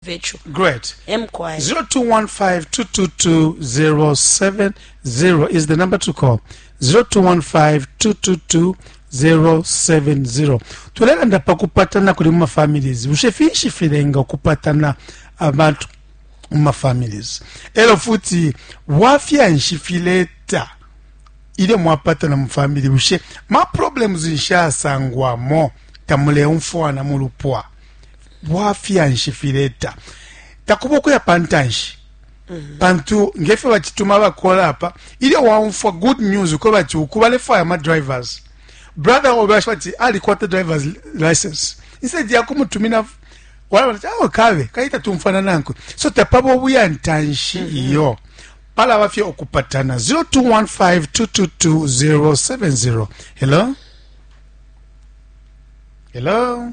virtual. Great. Mkwai. 0215222070 is the number to call. 0215222070. Tulelanda pa kupatana kuli muma families. Bushe finshi filenga kupatana abantu muma families. Elo futi wafya nshi fileta ile mwapatana mu family bushe ma problems nshasangwamo tamuleumfwana mu lupwa. Bwafya nshi fileta? Takuba ukuya pa ntanshi mhm. pantu nge fyo bacituma bakola apa ilyo waumfwa good news uko bati uku balefwaya ama drivers brother obe basho bati alikwata drivers license instead ya kumutumina wala bati awo ah, kabe kayita tumfana nankwe so tapaba obuya ntanshi mhm. iyo palaba fye okupatana 0215222070 hello hello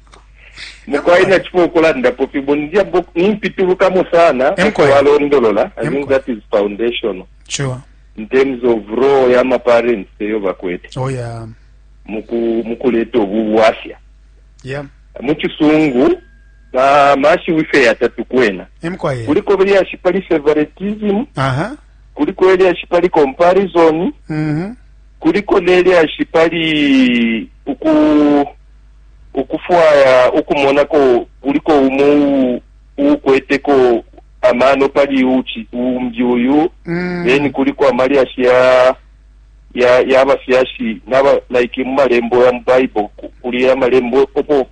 mukwai nacipo ukulandapo fibo nimpitulukamo sana walondolola i think that is foundational sure. in terms of role ya maparents eyo bakwete oh, yeah. mukuleta obu bwafya yeah. mukisungu mashi wife yatatu kwena kuliko belyashi pali favoritism uh -huh. kuliko elyashi pali comparison mm -hmm. kuliko nelyashi pali uku ukufwaya ukumonako kuliko umo uukweteko amano pali uchi umbi uyu mm. then kuliko amalyashi ya ya yabafyashi naba like mu malembo ya mu bible kuli amalembo opo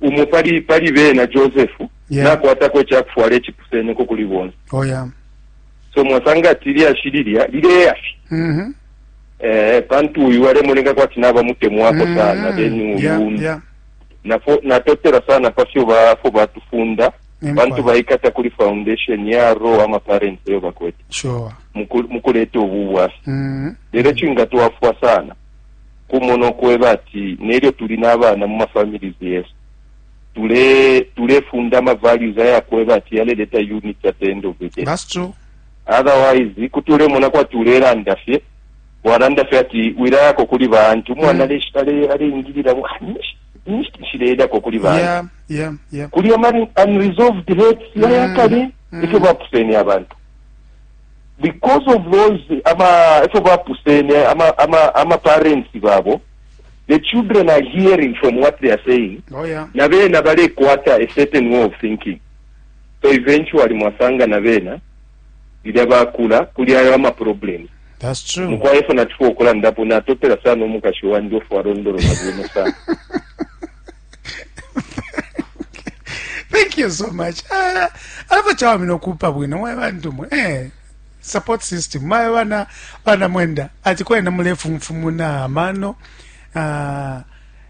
umo pali pali bena joseph yeah. nakwatako ekyakufwala ekipuseneko kuli bonse oh, yeah. so mwasanga ati lyashi lilya lileyafi mm -hmm. Eh, pantu uyu alemoneka kwati nabamutemwako mm, sana then uyu yeah, yeah. Nafo, natotela sana pafyo bafo batufunda bantu baikata kuli foundation ya ro ama parents eyo bakwete sure. mukuleta obu bwasi mm. lero kingatwafwa sana kumona okweba ati neryo tuli n'abaana mu mafamilies yesu tulefunda tule ama values ayakweba ati yaleleta unity at the end of the day That's true. Otherwise kuti ulemona kwati ulelanda fye, walanda fye ati wilayako kuli ba aunt. Umwana mm. ale aleingilila mu ah, ninshi nshileyako kuli ba yeah, yeah, yeah. kuli amari unresolved hates mm. yayakale mm. ifyo bapusene abantu because of those ama ifyo bapusene ama ama ama parents babo the children are hearing from what they are saying oh, yeah. na bena balekwata a certain way of thinking So eventually mwasanga na bena lilya bakula kuli ayo ama problems. That's true. Mukwai efo natuko ukulandapo natotela sana umukashi wandi ofu alondolola bwino sana. Thank you so much. Ah, alafu chawa mino kupa bwino mwe bantu mwe. Eh, support system. Mwe wana wana mwenda. Ati kwenda mule fumfumuna amano. Ah, uh,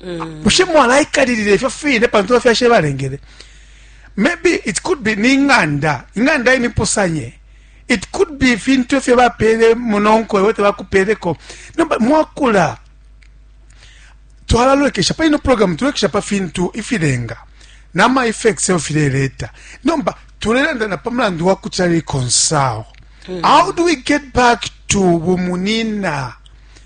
mm. bushe mwalaikalilila ifyo fine pantu bafyashe balengele maybe it could be ni ing'anda ing'anda imipusanye it could be ifintu efyo bapeele munonko ewe tebakupeeleko nomba mwakula twalalolekesha pa ino programu tulolekesha pa fintu ifilenga nama effects eyo fileleta nomba tulelanda na pa mulandu wa kutya reconcile mm. how do we get back to bumunina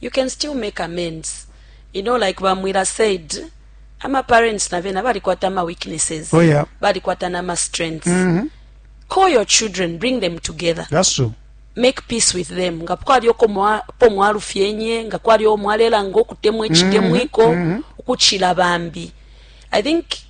you can still make amends you know like ba mwila said ama parents na bena balikwata ama weaknesses oh, yeah. balikwata na ama strengths mm -hmm. call your children bring them together that's true make peace with them nga kwali oko mwa po mwalu fyenye nga kwali o mwalela ngo kutemwe chitemwiko mm -hmm. mm -hmm. ukuchila bambi i think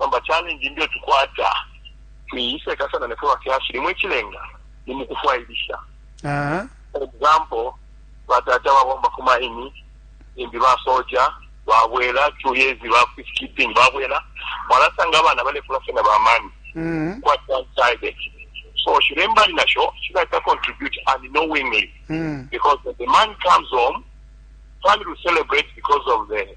Nomba challenge imbi etukwata tuiseka sana nefwe bafyashi limwe ichilenga ni mukufwailisha Aha. for example batata babomba ku maini imbi basoja babwela two years ba peacekeeping babwela mwalasanga abana balekula fena bamani Mhm. quite one-sided so shilembali nasho shilaita contribute unknowingly Mhm. because when the man comes home, family will celebrate because of the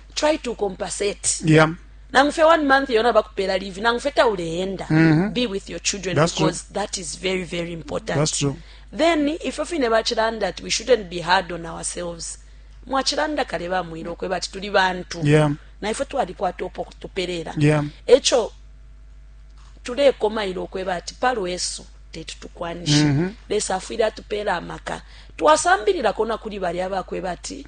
try to compensate yeah. nangu fye one month yona bakupela leave nangu fye tauleenda mm -hmm. be with your children That's because true. that is very very important That's true. then ifyo fine bachilanda ati we shouldn't be hard on ourselves mwachilanda kale bamwire okweba ati tuli bantu yeah. naifwe twalikwata opo tuperera yeah. echo tulekomaire okweba ati palwesu teti tukwanishe mm -hmm. lesa afwire atupera amaka twasambirirako nakuri bari abakweba ati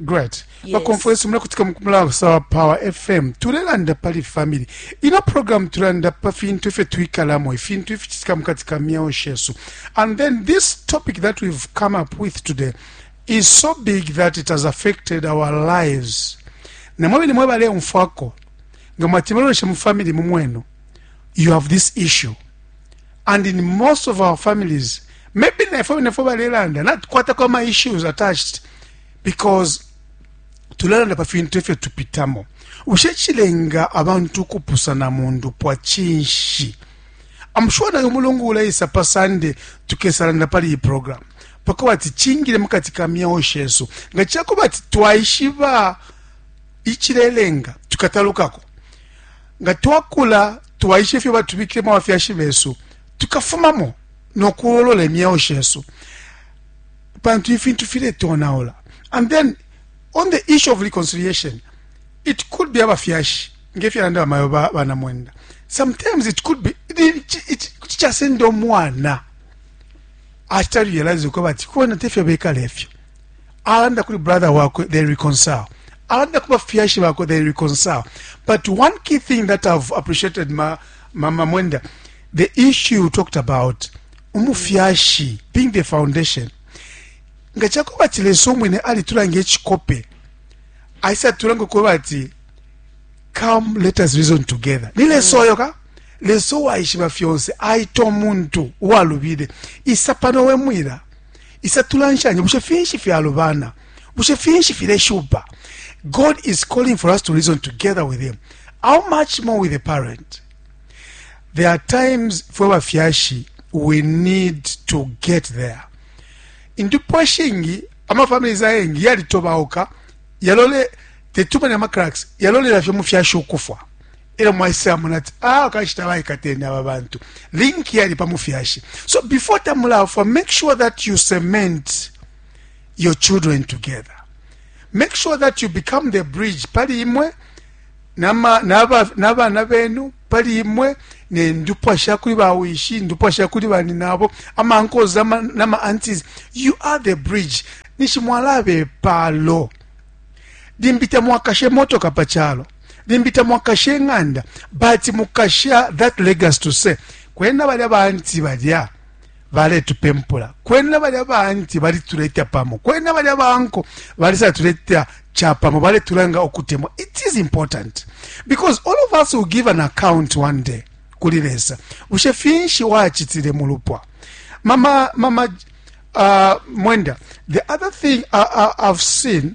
great yes. baconference mulakutika mulabusa wa power fm tulelanda pali family ino program tulanda pa fintu ifyo twikalamo ifintu ificitika mukati ka myeo shesu and then this topic that we've come up with today is so big that it has affected our lives namwe bene mwe baleumfwako nga mwati muloleshe mu family mumwenu you have this issue and in most of our families maybe nefwe nefwe balelanda natukwatako ama issues attached because tulelanda pa fintu efyo tupitamo bushe chilenga abantu ukupusana mu ndupwa chinshi I'm sure nayo mulungu uleisa pa Sunday tukesalanda pali iyi program pako bati chingile mukati ka myeo shesu nga chako bati twaishiba ichilelenga tukatalukako Nga twakula twaisha ifyo batubikilemo abafyashi besu, tukafumamo no kuololola imyeo shesu pantu ifintu filetonaula. And then on the issue of reconciliation, it could be abafyashi ngefyalanda bamayo bana mwenda sometimes it could be kuti chasenda omwana achita realize ko bati kona tefyo bekala efyo alanda kuli brother wakwe they reconcile alanda kuba fyashi bakwe they reconcile but one key thing that i've appreciated ma mama mwenda the issue you talked about umufyashi being the foundation nga chakuba chileso mwene ali tulange chikope aisa tulange kuba ati come let us reason together nile soyo ka leso waishiba fyonse aito muntu walubide isapano wemwira Isa tulanshanye, bushe finshi fyalubana? Bushe finshi fileshupa? God is calling for us to reason together with him. How much more with a parent? There are times fwe bafyashi we need to get there. Indupwa shingi ama families ayengi yalitobauka yalole tetumani ama cracks yalolela fye mufyashi ukufwa. elo mwaisamona ati ah kanshi tabaikatene aba bantu link yali pa mufyashi so before tamulafwa make sure that you cement your children together make sure that you become the bridge pali imwe n'abana benu pali imwe nendupwa shakuli bawishi ndupwa shakuli bani nabo amankozi nama antis you are the bridge nishimwalabe palo limbi tamwakashe motoka pa chalo limbi tamwakashe ing'anda but mukasha that legacy to say kwena balya baanti balya baletupempula kwena balya baanti balituleta pamo kwena balya baanko balisatuleta chapamo baletulanga okutemwa it is important because all of us will give an account one day kuli lesa bushe finshi wachitile mu lupwa mama mama uh, mwenda the other thing I, uh, I, uh, i've seen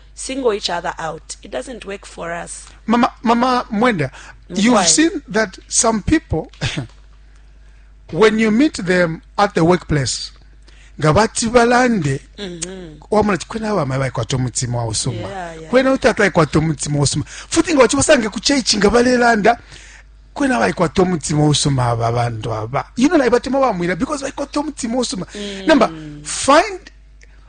single each other out. It doesn't work for us. Mama, Mama Mwenda, you've Why? seen that some people, when you meet them at the workplace, nga bati balande mm-hmm. wamona ti kwena abamayi baikwata omutima wausuma kwena utata aikwata omutima wausuma futi nga bakibasange ku chaichi nga balelanda kwena baikwata omutima wausuma aba abantu aba you know naye batema bamwira because baikwata omutima wausuma mm. number find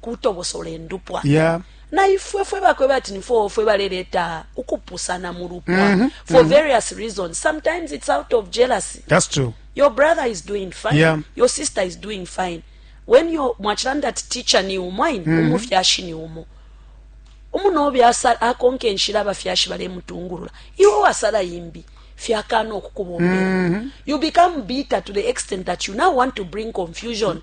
kutobosola indupwa yeah. na ifwe fwe bakwe bati ni fwe fwe baleleta ukupusana mu lupwa mm -hmm. for mm -hmm. various reasons sometimes it's out of jealousy that's true your brother is doing fine yeah. your sister is doing fine when your mwachilanda ati teacher ni umwaini mm -hmm. umufyashi ni umo umunobe asala akonke nshira abafyashi balemutungurura iwe wasala yimbi fyakana okukubombera mm -hmm. you become bitter to the extent that you now want to bring confusion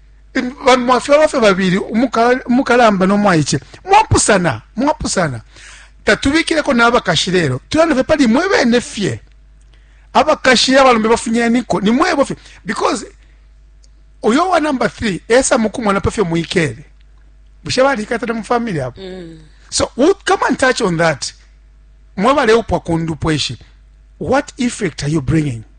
bambi mwafyalwa fye babili umukalamba no mwaice mwapusana mwapusana tatubikileko n'abakashi lelo tulanda fye pali mwe bene fye abakashi abalombe bafunyaniko ni mwebo fye because uyo wa number 3 esa mukumwana pa fye muikele bushe balikatana mu family apo mm. so we'll come and touch on that mwe baleupwa kundupweshi what effect are you bringing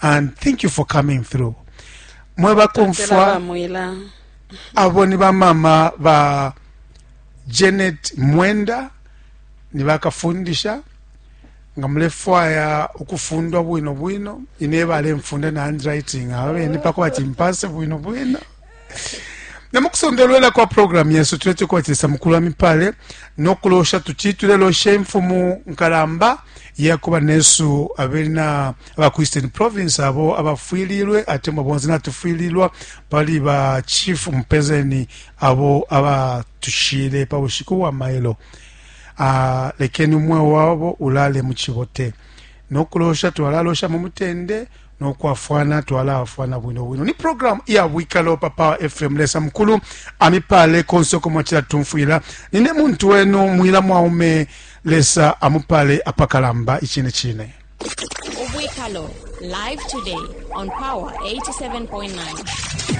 and thank you for coming through mwe bakomfwa abo ni bamama ba janet mwenda ni bakafundisha nga mulefwaya ukufundwa bwino bwino ine balemfunda na handwriting aba bene pako bati mpase bwino bwino na mu kusondolwela kwa programu yesu tulete kubatilisa mukulu wa mipale nokulosha tuci tulelosha imfumu nkalamba yakuba nesu abena aba ku eastern province abo abafwililwe atemwa bonse natufwililwa pali ba chief mupezeni abo abatushile pa bushiku bwa mailo uh, lekeni umweo wabo ulale mu cibote no kulosha twalalosha mu mutende no kwafwana twalaafwana bwino bwino ni programu iya bwikalo pa power fm lesa mukulu amipale konse uko mwacila tumfwila nine muntu wenu mwila mwaume lesa amupale apakalamba icine cine ubwikalo live today on power 87.9